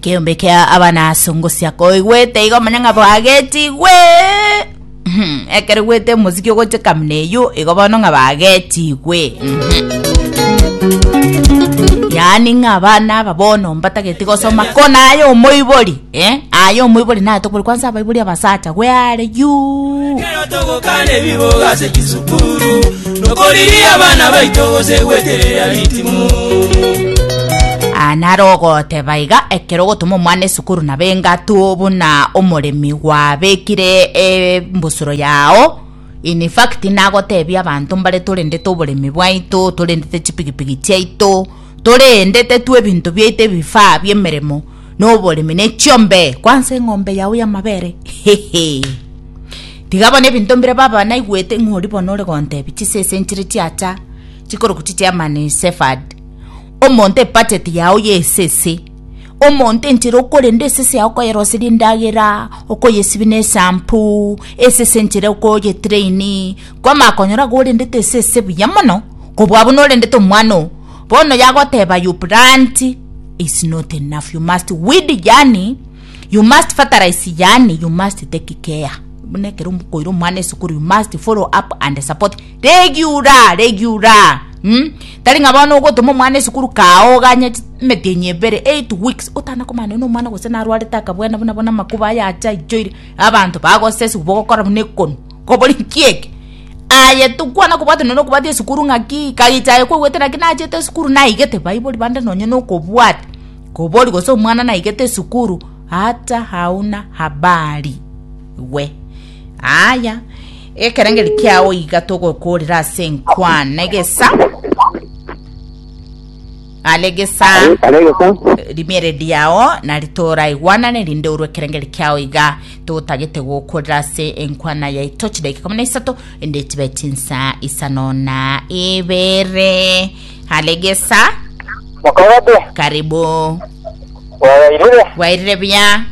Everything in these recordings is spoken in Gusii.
Keombe kia abana songosia koigwete igo manya ng'a bagetigwe Mhm, ekero gwete omosiki ogoche kamuna eyio igo bono ng'a bagetigwe Mhm. yaani ng'a abana aba bono mbatageti gosoma kona aye omoibori eh? aye omoibori natokobori kwansa abaibori abasacha gwe are yuu Kero togokana ebiboga ase chisukuru Nokoriria abana baito gose gweterera ritimu. Aa naro ogoteba iga ekero ogotoma omwana esukuru nabe engatu buna omoremi gwabekire embusuro yao in fact nagotebia abanto mbare torendete oboremi bwaito torendete chipigipigi chiaito torendete tu ebinto biaito ebifaa biemeremo noboremi ne chiombe kwansa eng'ombe yao y'amabere hehe tiga bono ebinto mbire baba naigwete ng'a ori bono ore gontebi chise ase enchire chiacha chikoroku chichiamani sefad omonto ebacheti yao ya esese omonto enchera okorenda esese yao okoyeroseria endagera okoyesibia na esampoo esese enchera okoyetraini kwamanya konyora iga orendete esese buya mono kobua buna orendete omwana oo. Bono yagoteba you plant is not enough you must weed yani you must fertilize yani you must take care buna ekero koira omwana esukuru you must follow up and support regular regular hmm? tari ng'a bono ogotoma omwana esukuru kaoganye emetienyi ebere 8 weeks otana komana na omwana gose narwarete akabwena buna bono amakuba ayacha aichoire abanto bagosesu bogokora buna ekonu Kobori nki eke? Aye tokwana kobwate nonye nokobwate esukuru ng'aki, kagita aye kwaigwete naki nachete esukuru naigete baibori bande nonye nokobwata. Kobori gose omwana naigete esukuru ata hauna habari we. Aya, ekerengeri kiao iga togokoorera ase enkwana egesa. Gare gesa Are- are gesa rimiere riao na ritora igwanane rinde orwe ekerengeri kiao iga togotagete gokorera ase enkwana yaito chidakika ikomi na isato ende chibe chinsa isano na ibere halegesa mokogate karibu bwayairire bwairire bia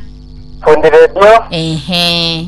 fundi redio ehe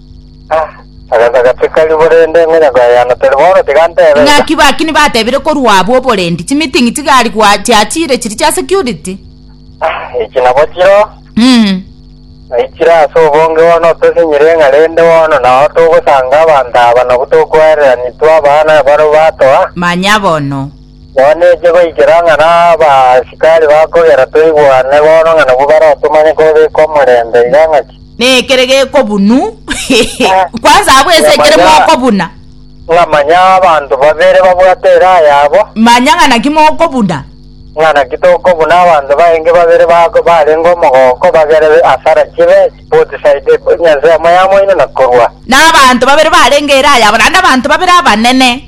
Agasaka tikari borende ngonya koyayana tari bono tiga ntebe iga. Ng'aki baki nibatebire korwa abwo oborendi, chimiting'i chigari gwa- chiachire chiri chia security? Echi nabo chiro Mm. naichire ase obonge bono otosinyire ng'a rende bono nao togosanga abanto aba nabwo tokwaerera nitwe abana baru batoa. Manya bono. Twanche goikera ng'a nabaasikari bakogera toigwane bono ng'a nabwo baratomanye kobeka omorembe iga ng'aki. Nekere gekobunu kwanza abwo ense ekere mokobuna. Ng'a manya abanto babere babwate eraa yabo. Manya ng'a naki mokobuna. Ng'a naki tokobuna abanto bainge babere barenge omogoko bagere asara chibe both side ense yamo yamoino na korwa. Nabanto babere barenge eraa yabo naende abanto babere abanene.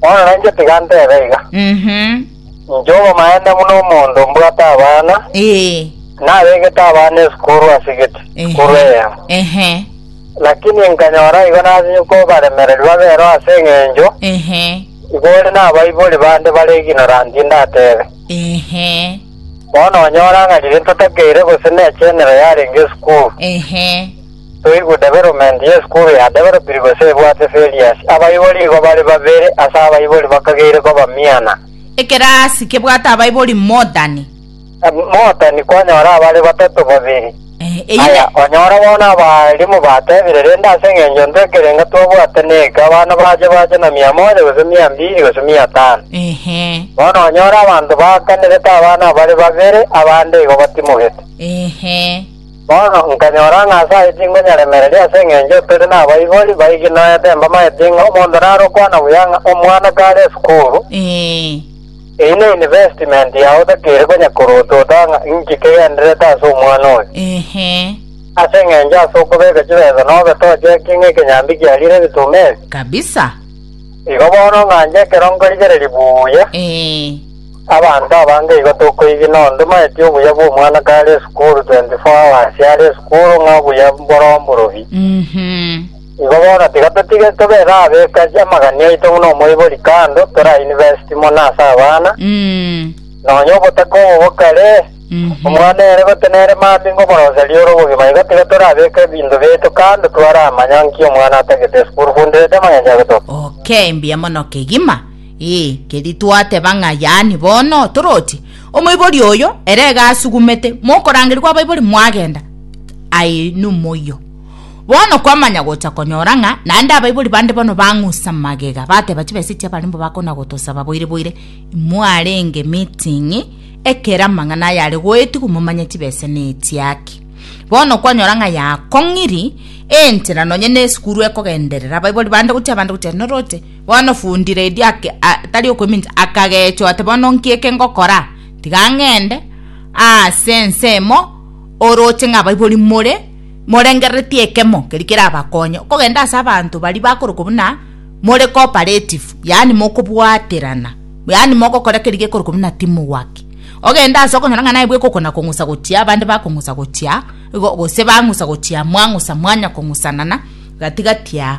Bono nainche tiga ntebe iga, Mhm. inche omomaene buna omonto mbwate abana, Eh. nabegete abana esukuru ase gete, sukuru Ehe. eyemo. Ehe. Lakini nkanyora igo nasinyi kobaremereri babere ase eng'encho Ehe. igo ore nabaibori bande bare ignorant ndatebe. Ehe. Bono onyora ng'a riria ntotakeire gose nechenero yarenge esukuru, Ehe. Toigwe development ye esukuru ya developiri gose ebwate failures. Abaibori igo bare babere ase abaibori bakageire koba miana. Ekerasi kebwate abaibori mootani. Mootani kwanyora abare batato babere. Aya, onyora bono abalimu batebire, rende ase engencho intwe ekerenga twabwate neke, abana bache bache na mia moja gose mia mbiri gose mia tano. Bono onyora abanto baakanirete abana abare babere, abande igo batimogete. Bono nkanyora ng'a ase ayio tinkonyeremereria ase engencho tore nabaibori baigi noete mbamaete ng'a omonto narokwana buya ng'a omwana kare esukuru, Ee. eyio ne investment yao otakeire konya korotota ng'a inki kegendererete ase omwana oyo. Ehe. Ase engencho ase okobeka chibesa nobe tochekie ng'a ekenyambi kiarire ebitumeri. Kabisa. Igo bono ng'anche ekero nkorigereria buya. Ee. Abanto abange igo tokoigina ondomaeti obuya bw'omwana kare esukuru 24 hours are esukuru ng'a obuya mboromborobie. Igo bono tiga totige tobere abeka amagani aito buna omoibori kando tore a university mono ase abana, nonya obotaka obo bokare, omwana ere gotenere mambia ngomoroseria ore obogima igo tiga tore abeka ebinto biaito kando twaramanya nki omwana atagete esukuru fundirete amang'encho agetokia. Okay, mbuya mono kegima. Ee, keri twateba ng'a yaani bono toroti, omoibori oyo ere iga asugumete, mokorangerigwa abaibori mwagenda, aye nomoyio. Bono kwamanya gocha konyora ng'a naende abaibori bande bono bang'usa magega, bateba chibesa echi abarembo bakona gotosaba boire boire, imwarenge meeting, ekero amang'ana aya are goetigwa momanye chibesa nechiaki. Bono kwanyora ng'a yakong'iri enchera nonye nesukuru ekogenderera abaibori bande gochia abande gochia norooche Bono fundi redi ake, a, tari okomincha, akageechwa ati, Bono nki eke ngokora? Tiga ng'ende aase ensemo orooche ng'a abaibori more morengereretie ekemo keria kerabakonye. Okogenda ase abanto baria bakorokwa buna more cooperative, yaani mokobwaterana, yaani mogokora keria gekorokwa buna teamwork. Ogende ase okonyora ng'a naye bwe ekokona kong'usa gochia, abande bakong'usa gochia, igo gose bang'usa gochia, mwang'usa mwanya kong'usanana gati gati aa.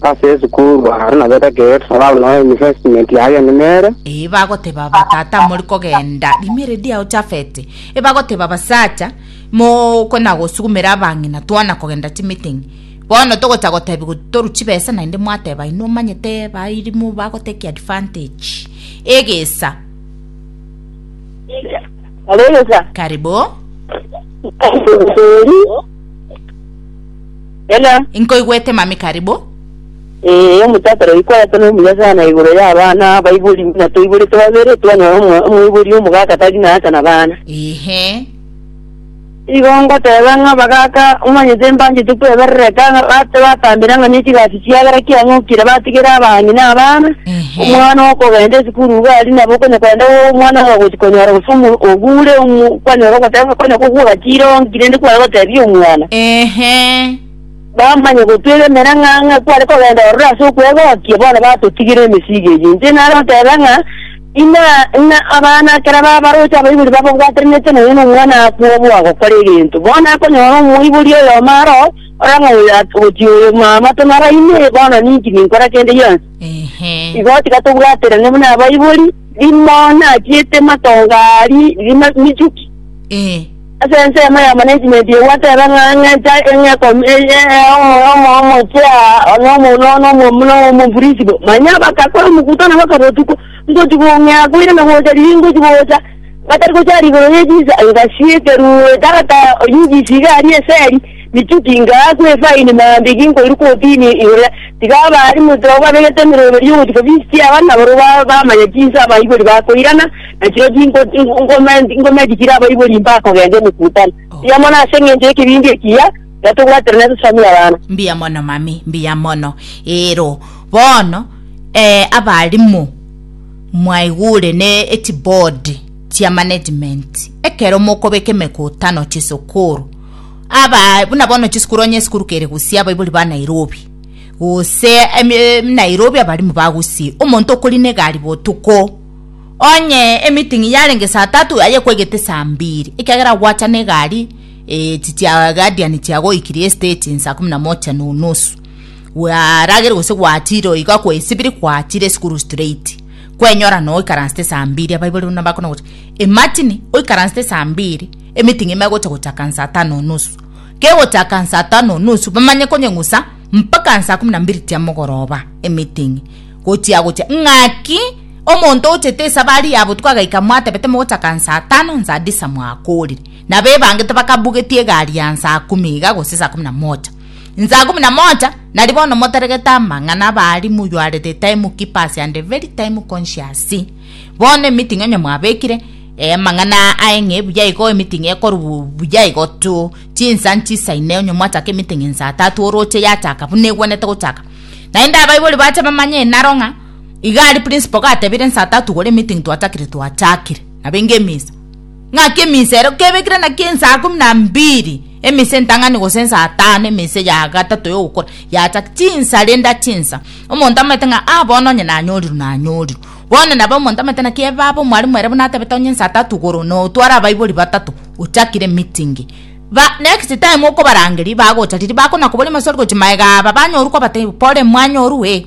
Ase esukuru aro nabete gate nabao noe investment yaye ende nere. Ee, bagoteba aba tata mori kogenda rimere diao Jafeti. Ee, bagoteba abasacha, moko na gosugumera abang'ina twana kogenda chimeeting. Bono togocha gotebi go- toru chibesa naende mwateba inwe omanyete bairimu bagoteki advantage. Egesa. Kare egesa. Karibu. Tori. Hello. Inkoigwete mami karibu. Eh, omotata rero ikorete na omuya sana igoro ya abana abaibori na toiborete babere twanyora omo- omoibori omogaka tari na asa na bana. Ehe. Igo ngoteba ng'a abagaka omanyete mbanchete kweberereka ng'a bate batambera ng'a nechi gasi Ekiagera kiang'okire batigere abang'ina abana, omwana okogenda esukuru igo aria nabo okonya kogenda omwana oyo ogochi konyora gose omo ogure omo kwanyora ogoteba konya kogwa ogachire onki rende kware gotebia omwana. Ehe. Bamanye gotwega emerang'a ng'a kware kogenda ororo ase okwegokia bono batotigera emesigo eyio. Inche nare oteba ng'a ina ng'a abana ekero babaroche abaibori bababwaterenete nonya nomwana akwa obo agokora egento bono akonyora omoibori oyomo aroo, Orang'o oyo agochia oyo mwamato naro ime? Bono ninki ninkora kende gionsi? Ehe. Igo tiga tobwaterane buna abaibori, rimo nachiete matongo aa ri- rima- michuki. Eh. Ase ensemo yamo na esimenti egwata ebe ng'a- ng'encha eng'ekomi e- e- e- omo- omo- omochia na omo- no- no- omo- no- omomfurisibo. Manya bakakora omokuto na bakaba otuko, ngochi gong'ea koirana gocha riria ingochi gocha. Batari gocha aro igoro ye chinsa, engaki y'ekeruuro etagata oy'inchisi iga aria eseri, michuki ingaa kw'efaini maambia iga inkoiru kw'otiini igoro. Tiga abaari motwe abwo babegete emeroberi y'ogochika ofisi chiabo, na barabwo bamanya chinsa abaibori bakoirana, na chirochio ingoma echi chire abaibori mbakogenga emekutano. Mbuya mono ase engencho y'ekebingo ekiya, iga tobwaterane ase chisamu y'abana. Mbuya mono, mami, mbuya mono. Eero bono, ee, abaalimu. Mwaigure ne echibodi chia management ekero mokobeka emekutano chisukuru aba buna bono chisukuru onye esukuru kere Gusii abaibori ba Nairobi gose em, em, Nairobi abarimu ba Gusii omonto okori ne egari botuko onye emeeting yarenge saa tatu aye kwegete saa mbiri ekiagera gwacha ne egari eh, chichia guardian chiagoikirie stage saa kumi na moja na unusu Gwaragire gose gwatire oo iga kwaesibiri kwatire esukuru straight. Kwenyora noo ikaransete saa mbiri abaibori buna bakona gocha. E Martin oikaransete saa mbiri emeeting ime egocha gochaka saa tano nusu. Kegochaka saa tano nusu bamanye konyeng'usa mpaka saa kumi na mbiri chia mogoroba emeeting. Gochia gocha ng'aki omonto ochete esabari ya botuko agaika mwatebete mogochaka saa tano saa disa mwakorire. Nabo ebangete bakabugetie egari ya saa kumi iga gose saa kumi na moja. Nsaa ikomi na moja, nari bono motaregete amang'ana abaalimu you are the time keepers and the very time conscious. Bono emeeting onye mwabekire eh, amang'ana aya aeng'e buya igo emeeting ekorwa buya igo tu chinsa nchisa ine onye mwachaka emeeting nsaa tatu oroche yachaka buna egwenete gochaka naende abaibori bache bamanye enaro ng'a iga aria principal gatebire nsaa tatu gore emeeting twachakire twachakire nabo enga emisa ng'aki eminsa ero kebekire naki ensaa ikomi na mbiri eminsa entang'ani gose ensaa tano eminsa ya gatato yogokora yacha chinsa rende ache ensa omonto amanyete ng'a aa bono onye nanyorirwe nanyorirwe bono nabo omonto amanyete naki ebabe omwalimu ere buna atabete onye ensa tatu igoro na otware abaibori batato ochakire emeeting ba next time okobarangeria bagocha riria bakona koboria amaswali gochia magega aba banyorwa kwabatebia pole mwanyorwa ee.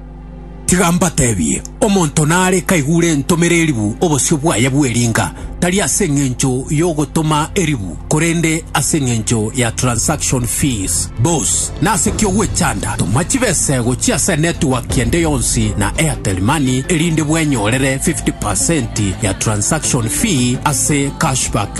Tiga mbatebie, omonto nare kaigure entomera eribu obosio bwaye bw'eringa, tari ase engencho y'ogotoma eribu, korende ase engencho ya transaction fees. Bos, nase ki ogwechanda? Toma chibesego chia ase network ende yonsi na Airtel Money erinde bwenyorere 50% ya transaction fee ase cashback.